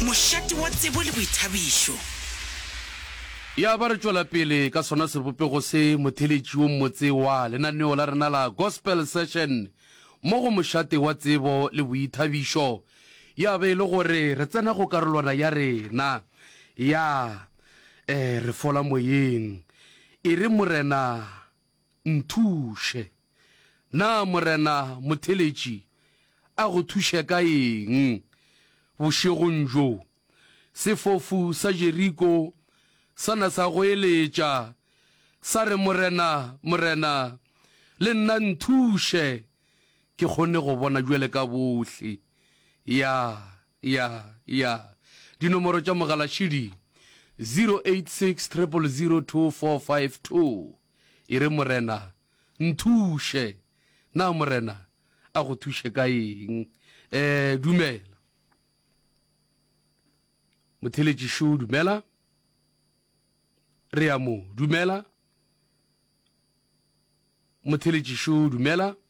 Mošate wa tsebo le boithabišo. Ya ba re tšwela pele ka sona sebopego se, motheeletši wo mmotse wa lenaneo la rena la Gospel Session mo go Mošate wa tsebo le boithabišo ya be e le gore re tsena go karolwana ya rena ya Re fola moyeng. E re Morena Nthuše. Na Morena motheletši a go thuše ka eng bošegong bjo? Sefofu sa Jeriko sa na sa goeletša, sa re, Morena, Morena, le nna nthuše ke kgone go bona bjale ka bohle. Ya. Ya, ya. Dinomoro tša mogala še di, 086 000 2452. E re, Morena, nthuše. Na Morena a go thuše ka eng? E, dumela. Motheletši šo, dumela. Re ya mo, dumela. Motheletši šo, dumela.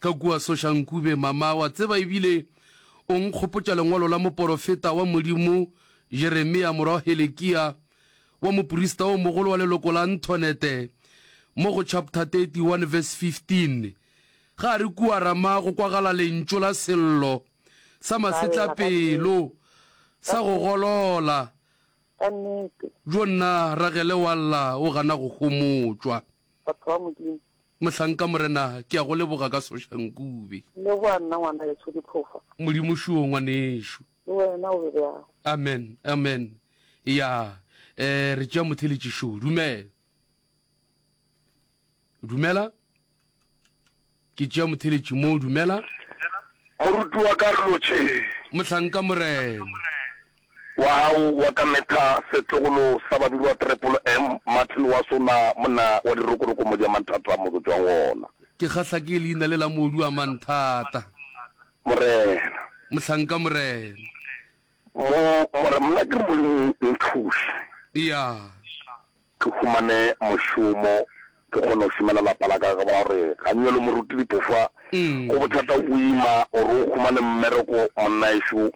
Ka kua Soshankube, Mama, wa tseba, e bile o nkgopotša lengwalo la moporofeta wa Modimo, Jeremia, morwa wa Helekia, wa moprista o mogolo wa leloko la Antonete, mo go chapter 31 verse 15. Ga re kua Rama go kwagala lentšu la sello sa masetlapelo sa go golola. Bjo nna Ragele wa lla o gana go homotšwa. Batho ba Modimo. Mohlanka, Morena, ke a go leboga ka Soša Nkube. Leboga nna, Ngwanaetsho Diphofa. Modimo šoo, ngwanešu. Le wena o be bjang? Amen. Amen. Eya, eh, re tšea motheeletši šoo. Dumela. Dumela. Ke tšea motheletši moo. Dumela. Moruti wa ka, re lo tšhe. Mohlanka, Morena. Wa gago wa ka metha setlogolo sa badudi wa Trepolo M. Martin wa sona, monna wa dirokoroko modi a manthata mo go tšwang gona. Ke kgahla ke leina le la modu a manthata. Morena. Mohlanka, Morena. Mo, Morena, monna ke re Molimo o nthuše. Eya. Ke humane mošomo, ke kgone go šomela lapa la ka, ka baka gore ga nyo le moruti dipofa, go bothata go ima gore o humane mmereko monnaešo,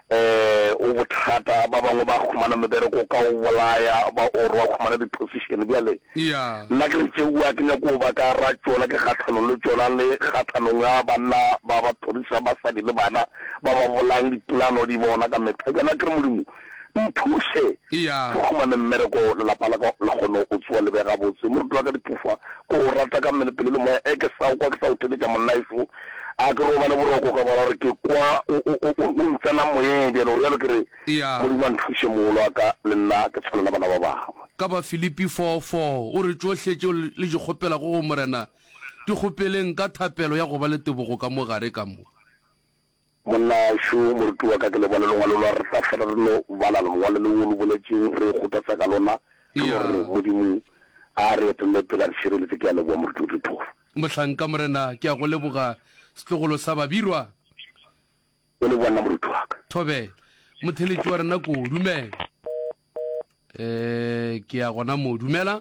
um go bothata, ba bangwe ba humana mebereko ka go bolaya, ba or ba humana di position. Bjale nna ke re tšeo a ke nyake go ba ka ra tšona, ke kgahlanong le tšona, le kgahlanong ya banna ba ba thorišang basadi le bana, ba ba bolayang dipolano di bona ka mehla. Bjale a ke re Modimo, Nthuše ke humane mmereko lelapa la ka le kgone go tsoa le be gabotse. Moruti wa ka Diphofa, ke o rata ka mmele, pelo le moya. Eke sa o kwa, ke sa o theletša monnaeso. A ke robale boroko ka gona gore ke kwa o ntsena moyeng bjale. O realo ke re, Modimo a nthuše moolo wa ka le nna ke tshwane le bana ba bangwe. Ka Bafilipi 4, 4 o re, Tšohle tšeo le di kgopelago go Morena, di kgopeleng ka thapelo ya go ba le tebogo ka mo gare ka mo. Monnaxo, Moruti wa ka, ke le bale longwalo lwa re tla fela re no bala lengwalo le o lo boletšeng re ikgothatsa ka lona, re no re Modimo a re etelele pele a re šireletše. Ke a leboga, Moruti o Dithoro. Mohlanka, Morena, ke a go leboga, setlogolo sa Babirwa. O leboga nna, Moruti wa ka. Thobela, Motheletši wa rena ko, dumela. Ee, ke ya gona moo, dumela.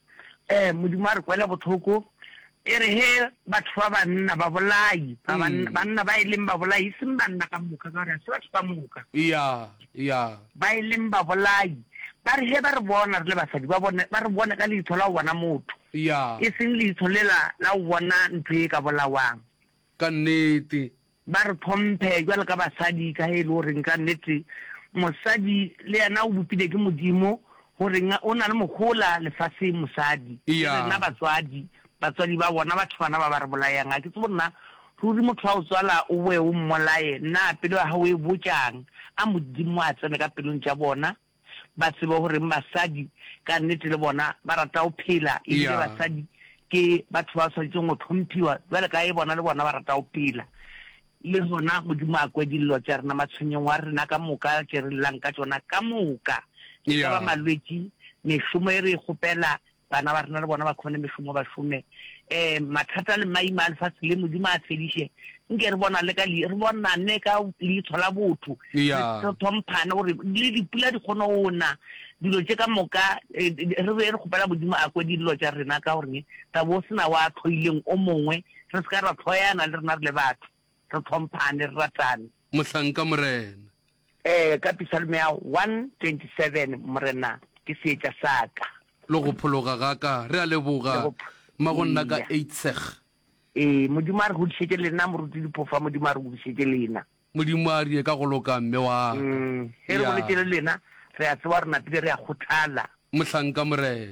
Ee, Modimo a re kwele bohloko. E re he batho ba banna, babolai, ba banna, banna ba e leng babolai, e seng banna ka moka, ka gore ga se batho ka moka, Eya, eya. ba e leng babolai, ba re he ba re bona re le basadi, ba bone, ba re bone ka leitho la go bona motho, Eya, e seng leitho lela la go bona ntho e ka bolawang. ka nnete. Ba re tlhomphe bjalo ka basadi, ka ge e le goreng ka nnete mosadi le yena o bopile ke Modimo, gore o na le mohola lefaseng. Mosadi le rena batswadi, batswadi ba bona batho bana ba ba re bolayang. Ga ke tsebe gore na ruri motho wa go tswala o boe o mmolaye na pelo ya gago e botšang. A Modimo a tsene ka pelong tša bona. ba tsebe gore basadi ka nnete le bona ba rata go phela, ebile basadi ke batho ba tshwanetseng go tlhomphiwa jale ka e bona le bona ba rata go phela. Le gona Modimo a kwe dillo tša rena, matshwenyong wa rena ka moka ke re llang ka tšona ka moka, e ka ba malwetši, mešomo e re e kgopela Bana ba rena le bona ba khone mešomo ba šome. Um mathata le maima a lefatshe le Modimo a fediše. Nke re bona le ka li re bonane ka leitsho la botho. Re thomphane gore le dipula di khone go na. Dilo tše ka moka re be re kgopela Modimo a kwe dillo tša rena ka gore tla bo o sena wa tlhoileng o mongwe re se ka ra tlhoyana le rena re le batho. re tlhomphane, re ratane. Mohlanka, Morena. Ee, ka Pisalmea 127, Morena ke seetša sa ka. Le go phologa ga ka. Re a leboga, Mmagonna ka Eidseg. Ee, Modimo a re godišetše lena, Moruti Dipofa, Modimo a re godišetše lena. Modimo a re ka go loka, mme wa ka. Ge re boletše le lena, re a tseba gore napile re a kgothala. Mohlanka, Morena.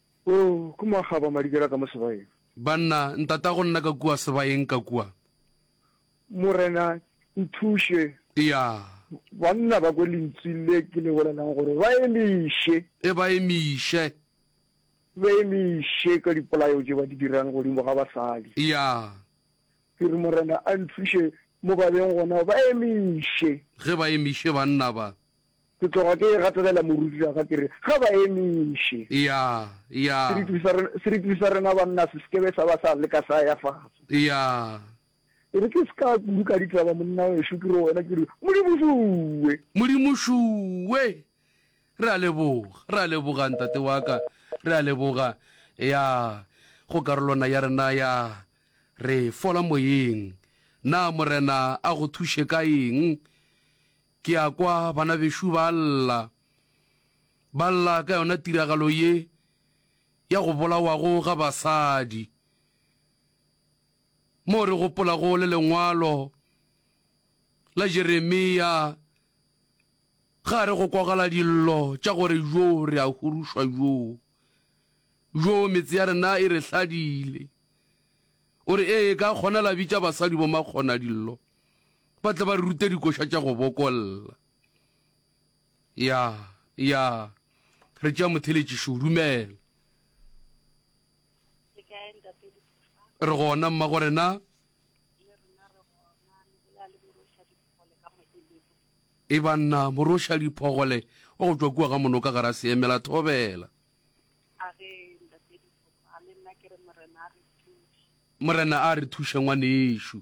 Oh, ke mo a kgaba madikela ka mo sebayeng. Banna, Ntatago nna ka kua sebayeng ka kua. Morena, nthuše. Ya. Banna ba kwe lentswi le ke le bolelang gore ba emiše. E ba emiše. Ba emiše ka dipolayo tše ba di dirang godimo ga basadi. Ya. Ke re Morena a nthuše mo ba beng gona ba emiše. Ge ba emiše banna ba. Ke tloga ke e gatelela moruti ya ka ke re, ga ba emiše. Eya, eya. Seriti sa rena, seriti sa rena banna se sekebe sa ba sa leka sa ya fatshe. Eya. E re ke se ka kudu ka ditaba monna wešo, ke re wena, ke re, Modimo šuwe. Modimo šuwe. Re a leboga, re a leboga, ntate wa ka. Re a leboga. Eya, go karolwana ya rena ya, re fola moyeng. Na Morena a go thuše ka eng? Ke a kwa bana bešo ba lla, ba lla ka yona tiragalo ye ya go bolawago ga basadi. Moo re gopolago le lengwalo la Jeremia, ga re go kwagala dillo tša gore yo re a hurušwa yo, yo metse ya rena e re hladile. O re, Ee, ka kgona la bitša basadi bomakgona dillo. Ba tla ba re ruta dikoša tša go bokolla. Ya, ya, re tšea motheletši šo, dumela. Re gona, mmagore na? E banna, moroša diphogole wa go tšwa kua ga mono ka gara seemela thobela. Morena a re thuše ngwanešu.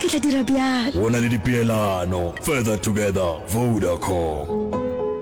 Ke tla dira bjalo. Go na le dipeelano. Further Together, Vodacom.